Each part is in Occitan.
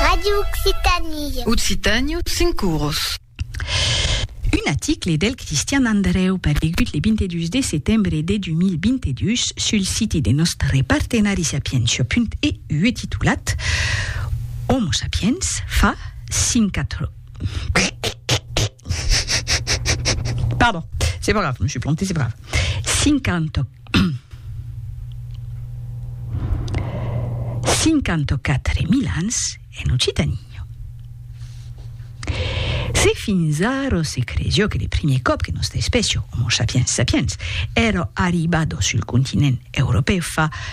Radio Occitanie. Occitània, cinc oros. Un aticle del Cristian Andreu paregut le 22 de setembre de 2022 sul siti de nòstre partenari sapientia.eu titulat Homo sapiens fa 50 ans 54 mil ans en Occitanie. Se fins ara se cresió que le primier còp que nòsta espècia, Homo sapiens sapiens, èra arribada sul continent europèu fa 3.000 ans,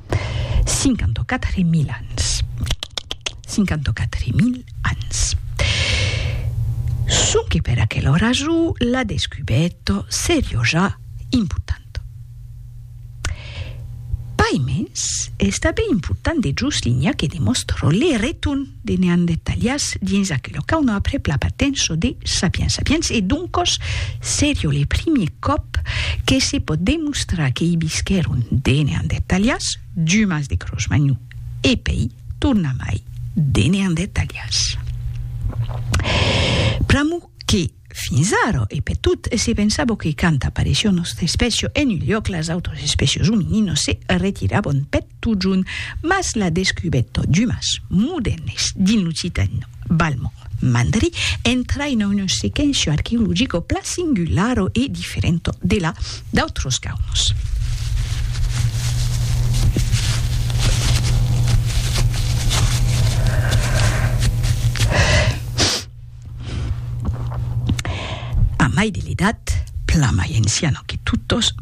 54.000 ans. 54.000 ans. Sonque per aquela ora jo la descubèt serioja importanta. Paimens, es tanben important de joslinhar que demòstro le retorn. de neandertalians dins aquela qu'auna après pla patenço de sapiens sapiens e doncos serio le primier còp que se pòt demostrar que i visquèron de neandertalians d'umans de crosmagnon e pei tornamai de neandertalians pr'amor que Fins ara, e per tot, se pensava que quand apareissiá nòstra espècia en un lhòc las autras espècias omininos se retiravan per totjorn, mas la descubèrta d'umas modèrnes dins l'occitan balmond mandarin entraina una sequéncia arqueologica plan singulara e diferenta de la d'autras caunas. A mai de l'edat, plan mai enciano que totos,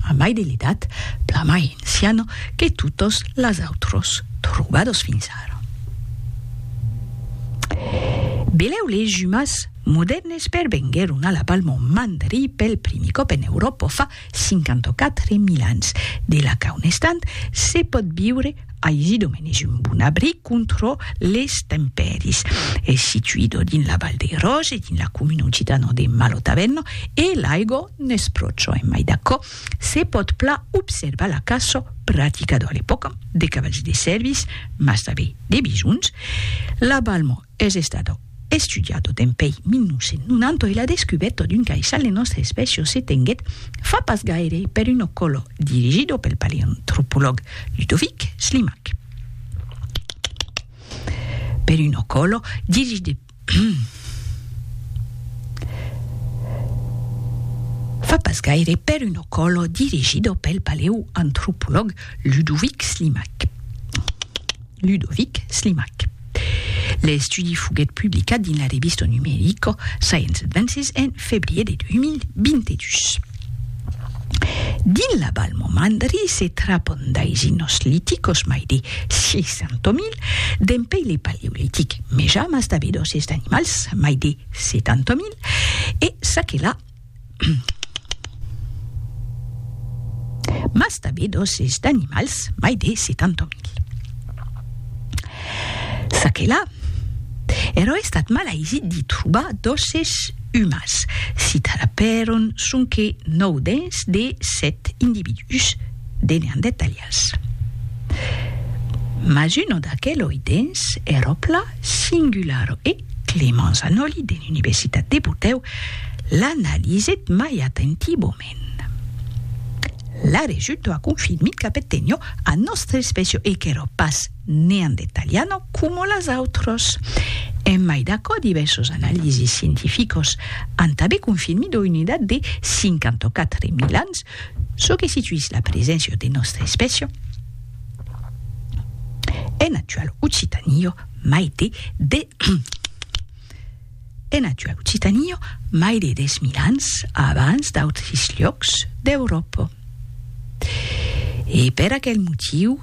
a mai de l'edat, plan mai enciano que totos las autros trobados fins ara. Beleu les jumas modèrnes pervenguèron a la Palma o Mandri pel primi còp en Euròpa fa 54 mil ans de la qu'a un estant se pòt viure aisi domen es un bon abric contrò les tempèris. Es situido dins la Val dei Roge, dins la comuna occitano de Malotavenno e l'aigò n'es pro çò en mai d'aquò se pòt pla observar la caçò praticado a l'epòca de cavalhs de sèrvis mas tanben de bisons la balmo Es estat estudiat dempèi 1990 e la descubèta d'un caissal de nòstra espècia se tenguèt fa pas gaire per un ocòlo dirigida pel paleantropològ Ludovic Slimak. Per un ocòlo dirigida fa pas gaire per un ocòlo dirigida pel paleantropològ Ludovic Slimak. Ludovic Slimak. L'estudi foguèt publicat dins la revista numerica Science Advances en febrier de 2022. Dins la Val Momandri se trapan d'aisin nosliticos mai de 600.000 dempuèi le Paleolitic, mejamas d'abedòs es d'animals mai de 70.000 e çaquelà mas tanben d'òsses d'animals mai de 70.000. Çaquelà, ero estat malaisit d'i trobar d'òsses umans, s'i trapèron sonque 9 dents de 7 individús de neandertalians, mas un d'aqueloi dents ero plan Singularo e Clément Zanoli de l'Universitat de Botèu l'analisèt mai atentivament. La resulta confirmit qu'apet tenió a nòstra espècia e qu'èra pas neandertaliana coma las autras. En mai d'aquò, divèrsos analises scientificas an tanben confirmit ua unitat de 54.000 ans, çò que situís la preséncia de nòstra espècia, En actual occitanio mai de de en actual occitanio mai de 10.000 ans abans d'autres llocs d'Euròpa. E per aquel motiu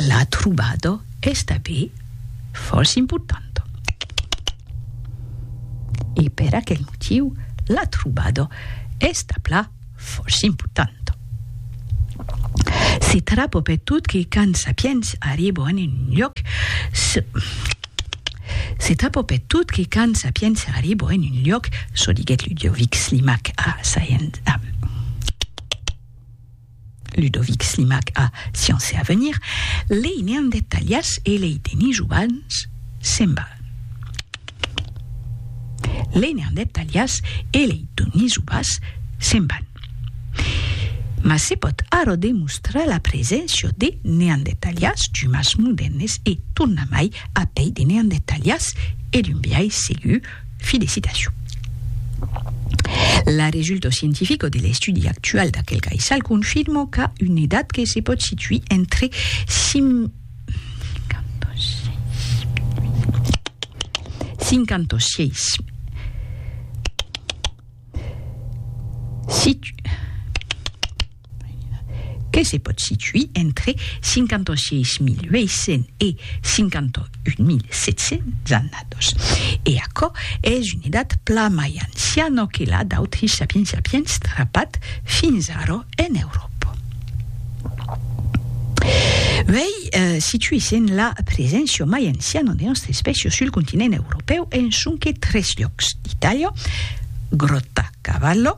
la trobada es tanben fòrça importanta. E per aquel motiu la trobada es tanpla Fòrça important. Se trapo per tot que quand Sapiens arribo en un lloc, se, se trapo per tot que quand Sapiens arribo en un lloc, çò diguèt Ludovic Slimak a Science, a. Ludovic Slimak a Sciences et Avenir, lei neandertalians e lei denisovans semblan. Lei neandertalians e lei donisovas semblan. Mas se pòt ara demostrar la preséncia de neandertalians d'umans modèrnes e, tornamai, a pei de neandertalians e d'un biais segur Fi de citacion. La resulto scientifico de l'estudi actual d'aquel caissal confirmo qu'a una edat que se pòt situir entre 56 e 100 ans. que se pòt situir entre 56.800 e 51.700 annados, e aquò es una edat plan mai anciana que la d'autri sapiens sapiens trapat fins ara en Euròpa. Uèi, situèssen la preséncia mai anciana de nòstra espècia sul continent europèu en sonque tres lhòcs d'Itàlia, Grottacavallo,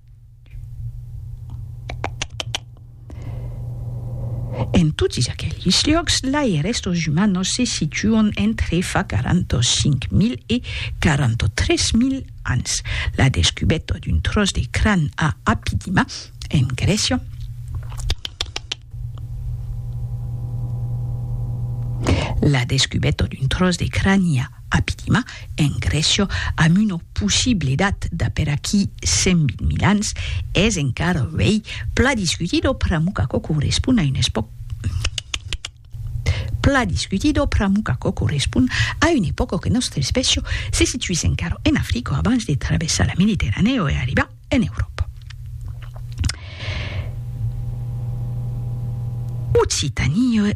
En totis aquelis liòcs, lai restos umanos se situan entre fa 45.000 e 43.000 ans. La descubeta d'un tròç de cran a Apidima, en Grècia, La descubeta d'un tròç de crani a. A Pilima, en Grècia, amb una possible edat d'aper aquí 120.000 ans, es encara uèi pla discutit o Pramukaco correspond a un espòc pla discutit o Pramukaco correspond a un epòc o que nòstra espècia se situís encara en Africa abans de travessar la Mediterranèa o e arribar en Euròpa. Occitanie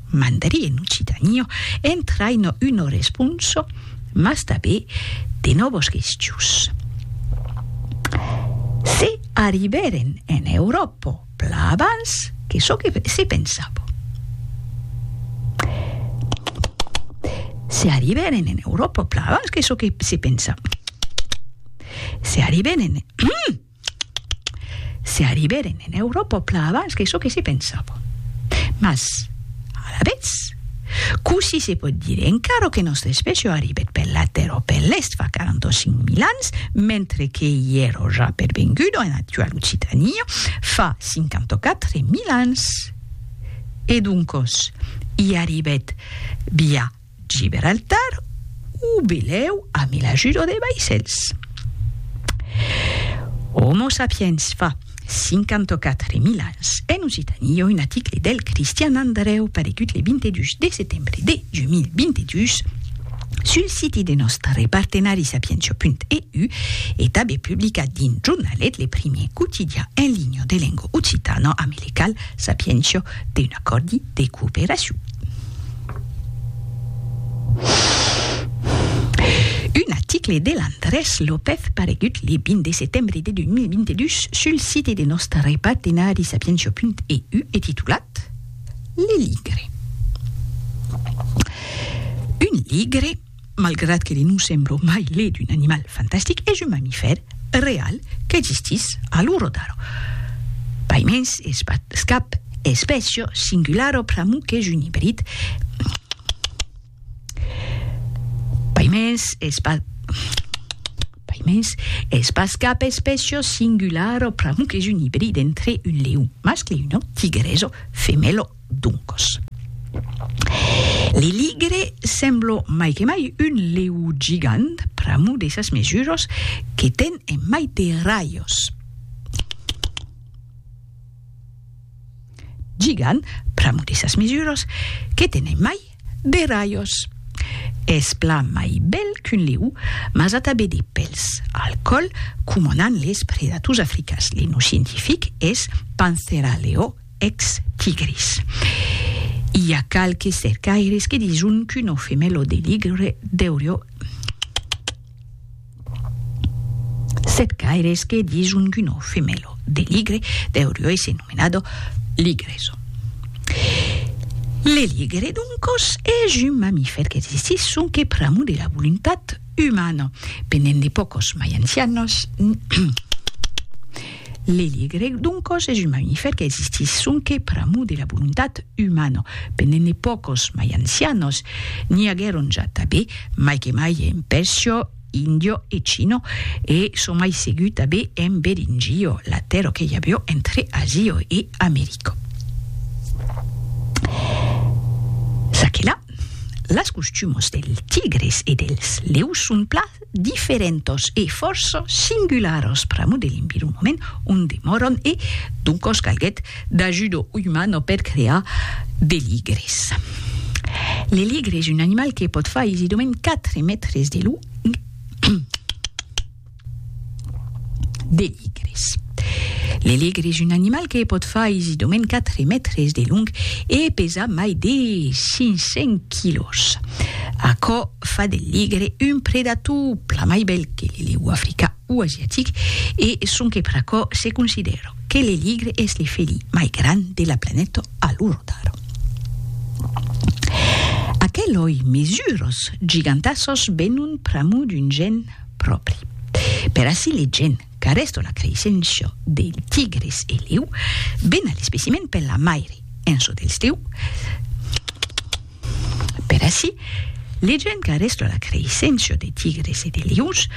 mandarí en occitaniò entraino uno responso mas tabé de nòvos gestius. Se arribèren en Euròpo plan abans que çò que se pensavo. Se arribèren en Euròpo plan abans que çò que se pensavo. Se arribèren en Se arribèren en Euròpa plan abans que çò que se pensava. Mas, alavetz, cossí se pòt dire encara que nòstra espècia arribèt per la Tèrra o per l'Èst fa 45 mil ans, mentre que i èra ja pervenguda en actuala Occitània fa 54 mil ans? E doncòs, i arribèt via Giberaltar o belèu a mi l'ajudo de vaissèls. Homo sapiens fa 54.000 ans en Occitanie un aticle del Cristian Andrèu paregut le 22 de setembre de 2022 sul siti de nòstre partenari sapientia.eu e tanbe publicat dins Jornalet, le primier quotidian en linha de lenga occitana amilical Sapientia d'un acòrdi de cooperacion. Un article de Landrés López paregut le 20 de setembre de 2022 sul site de nòstre partenari sapientia.eu e titulat Le ligre. Un ligre Malgrat que li non semblo mai lhe d'un animal fantastic, es un mamifèr real qu'existís a lo Ròdaro. Paimens es pas cap espècia singulara pr'amor qu'es un ibrid. Paimens es pas Paimens es pas cap espècia singulara pr'amor qu'es un ibrid entre un leon mascle e una tigresa femèla. Doncas, l'Eligre sembla mai que mai un leu gigant pr'amor de sas mesuras que ten en mai de raios. Gigant pr'amor de sas mesuras que ten en mai De rajos. Es plan mai bèl qu'un leu, mas a tanben de pèls al còl, coma n'an les predators africans. Le nom scientific es Panthera leo ex tigris. I a qualques cercaires que dison qu'una femèla de ligre deurió. Sèt caires que dins un guno femelo de ligre deurió èsser nomenado ligreso. Le ligre, d'un còs, es un mamifèr qu'existís sonque pr'amor de la voluntat umana, pendent de pòcos mai ancianos, L'eligreg d'un còs es un mamifèr qu'existís sonque pr'amor de la volontat umana. Pendent de pòcos mai ancianos, n'i aguèron ja tanben, mai que mai en Pèrsia, Índia e China, e çò mai segur tanben en Beringia, la tèrra que i aviá entre Asia e America. Çaquelà, las costumas dels tigres e dels leus son plan diferentos e fòrça singularos pr'amor de l'environment ont demòran e, doncos, calguèt d'ajudo umana per crear de ligres. Le ligre es un animal que pòt far aisidament 4 mètres de long e 1,5 mètres de llarg. De ligres. Le ligre es un animal que pot far aisidament 4 mètres de long e pesar mai de 500 quilòs. Aquò fa del ligre un predator plan mai bèl que le lèu africà o asiatic e sonque per aquò se considèra que le ligre es le felí mai grand de la planeta a l'ora d'ara. Aqueloi mesures gigantassas venon pr'amor d'un gen pròpri. Per ací legem qu'arresto la creissença del tigres e leu bena l'especimen per la maire en çò dels leu Per ací legem qu'arresto la creissença de tigres e de leus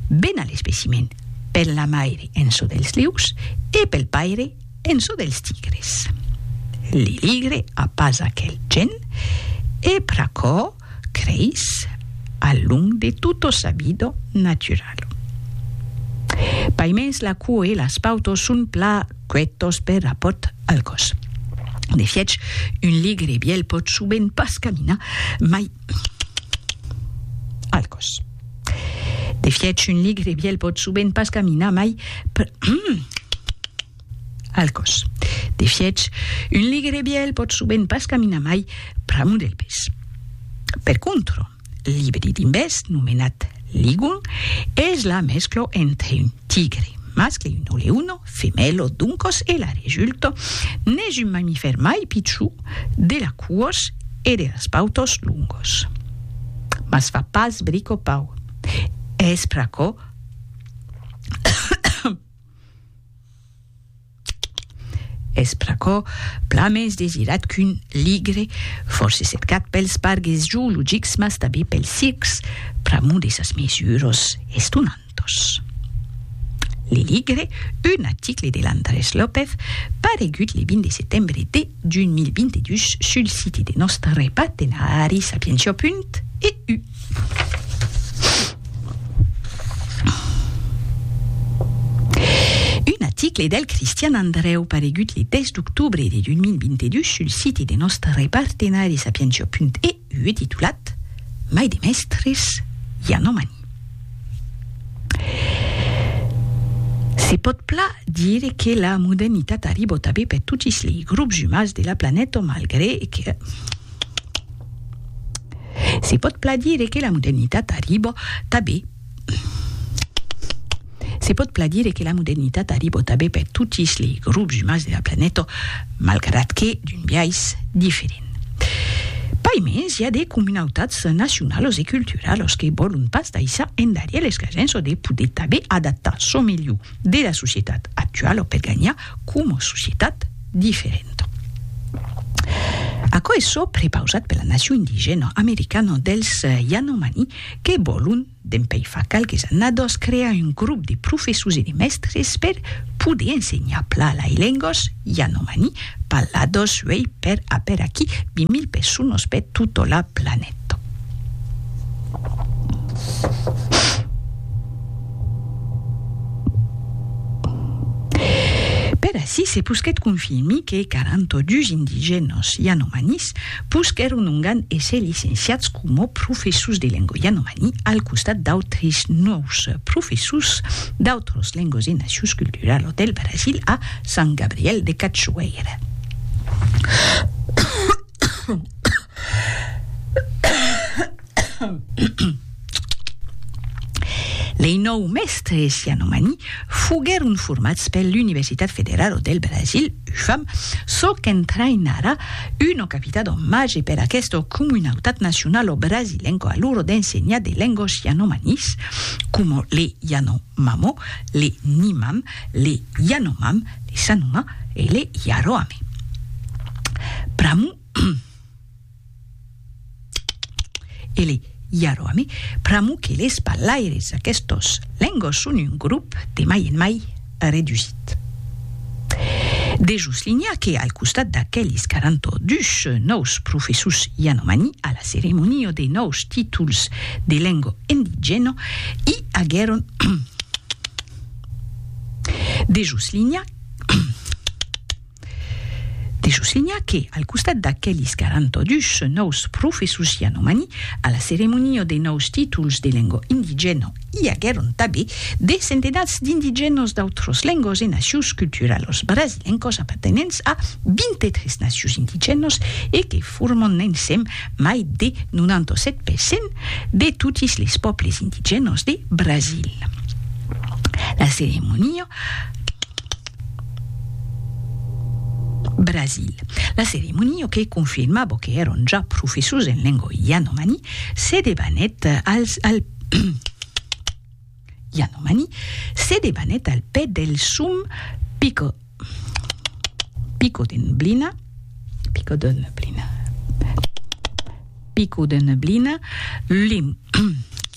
bena l'especimen per la maire en çò dels leus e pel paire en çò dels tigres Li ligre a pas aquel gen e pr'aquò creis a l'un de tutto sabido naturalo. Paimens la cua e las pautos son pla cuetos per rapòrt al còs. De fièch, un ligre bièl pòt sovent pas caminar mai al còs. De fièch, un ligre bièl pòt sovent pas caminar mai Al còs. De fièch, un ligre bièl pòt sovent pas caminar mai pr'amor del pes. Per contro, l'ibrid imbèst, nomenat ligun, es la mesclo entre un tigre mascle e un oleuno femèlo d'un còs e la resulta n'es un mamifèr mai pichon de la cuòs e de las pautas longos. Mas fa pas bricopau. Es pr'aquò Es pr'aquò plan mens desirat qu'un ligre, fòrça cercat pels pargues zoologics mas tanben pels circs, pr'amor de sas mesuras estonantas. Le ligre, un article de l'Andrés López, paregut le 20 de setembre de 2022 sul siti de nòstre partenari Sapientia. EU. Un aticle del Cristian Andrèu paregut le 10 d'octobre de 2022 sul site de nòstre partenari sapientia.eu titulat Mai de mèstres, i a nomani. Se pòt plan dire que la modernitat arribò tanben per totis lei grups umans de la planeta malgre que. Se pòt plan dire que la modernitat arribò tabé Se pòt plan dire que la modernitat arribò tabé per totis lei grops umans de la planeta, malgrat que d'un biais diferent. Pai mens, i a de comunautats nacionalos e culturalos que vòlon pas daissar endarrier l'escasença de poder tabé adaptar çò melhor de la societat actuala per ganhar coma societat diferenta. Aquò es çò prepausat per la nacion indigèna americana dels Yanomani que vòlon, dempèi fa qualques annadas, crear un grop de professors e de mèstres per poder ensenhar pla lai lengas Yanomani parladas uèi per aper aquí 20.000 personas per tota la planeta. Per ací se posquèt confirmir que 42 indigènos yanomanis posquèron ongan èsser licenciats coma professors de lenga yanomani al costat d'autres nòus professors d'autras lengas e nacions culturalas del Brasil a Sant Gabriel de Cachoeira. Lei nòu mèstres yanomani foguèron formats per l'Universitat Federal del Brasil, UFAM, çò qu'entraïnarà una capita d'omatge per aquesta comunautat nacionala brasilenca a l'ora d'ensenhar de lengas yanomanis, coma le yanomamo, le nimam, le yanomam, le sanuma e le yaroame. Pr'amor Ele iaro ami, pr'amor que les parlaires d'aquestos lengos son un grop de mai en mai redusit. Dejos linhar que al costat d'aqueles 42 nòus professors yanomani a la ceremonia de nòus títols de lengo endigèna i aguèron dejos linhar De soslinhar que, al costat d'aquelis 42 nòus professors yanomani, a la ceremonia de nòus títols de lengua indigèna i aguèron tanben de centenats d'indigènas d'autras lengas e nacions culturalas brasilencas apartenents a 23 nacions indigènas e que forman ensèm mai de 97 per cent de totes les pòbles indigènas de Brasil. La ceremonia. Brasil. La ceremonia que confirmabo que èron ja professors en lengua yanomani se debanèt al yanomani se debanèt al pè del sum pico pico de neblina pico de neblina pico de neblina lim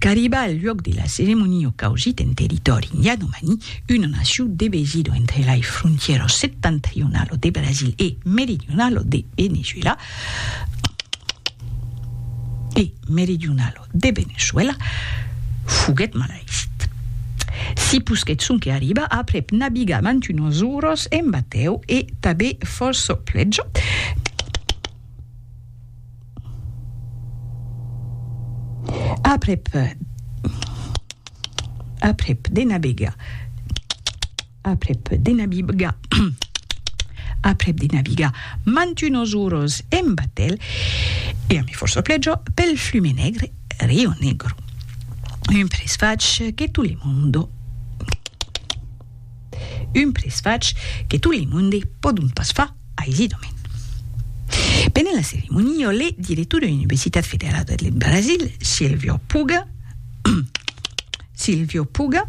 Qu'arriba al luòc de la ceremonia o causit en territòri yanomani, una nacion devesida entre lai frontièras septentrionala de Brasil e meridionala de Veneçuèla, e meridionala de Veneçuèla, foguèt malaisit. Si posquèt sonque arribar aprèp nabigar mantunas oras en batèu e tanben fòrça pleja, Aprèp aprèp de navegar aprèp de navigar aprèp de navigar mantunos uros en batèl e ami fòrça plèjor pel flume negre Rio Negro un presfach que tout le monde Un presfach que tot le monde pòdon pas far aisidament. Pendent la ceremoniò, le director de l'Universitat Federada deth Brasil, Silvio Puga, Silvio Puga,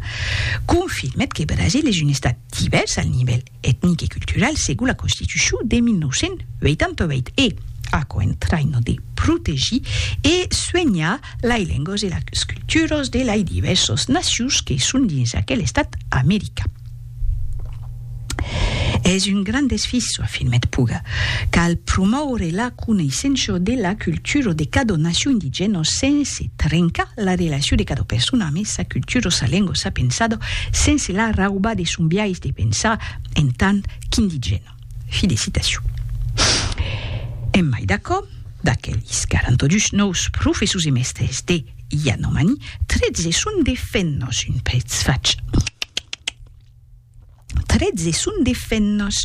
confirmèt que Brasil es un estat divèrs al nivèl etnic e cultural segon la Constitucion de 1988 e, aquò en traina de protegir e suenhar Lei lengos e las culturos de lei divèrsos nacions que son dins aquel estat american. Es un grand desfisò, afirmèt Puga. Cal promòure la coneissenço de la culturo de cadò nacion indigèno sense trencar la relacion de cadò persona amé sa culturo, sa lengo, sa pensado, sense la raubar de son biais de pensar en tant qu'indigèno. Fi de citacion. En mai d'aquò, d'aquelis 42 nòus professors e mèstres de Yanomami, 13 son de fennos, un prètz fach, 13 son de fennos,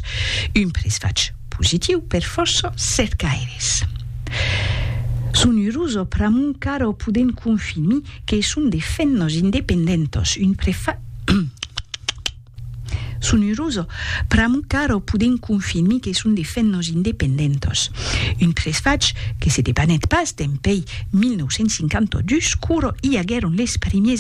un prètz fach positiu per fòrça cercaires. Son urusa pr'amor qu'ara o podèm confirmir que son de fennos independentos, un prètz fach, Son urós pr'amor qu'arò podem confirmir que son de fèt nos independentòs. Un tresfach que se debanèt pas dempèi 1952 qu'orò i aguèron les primiers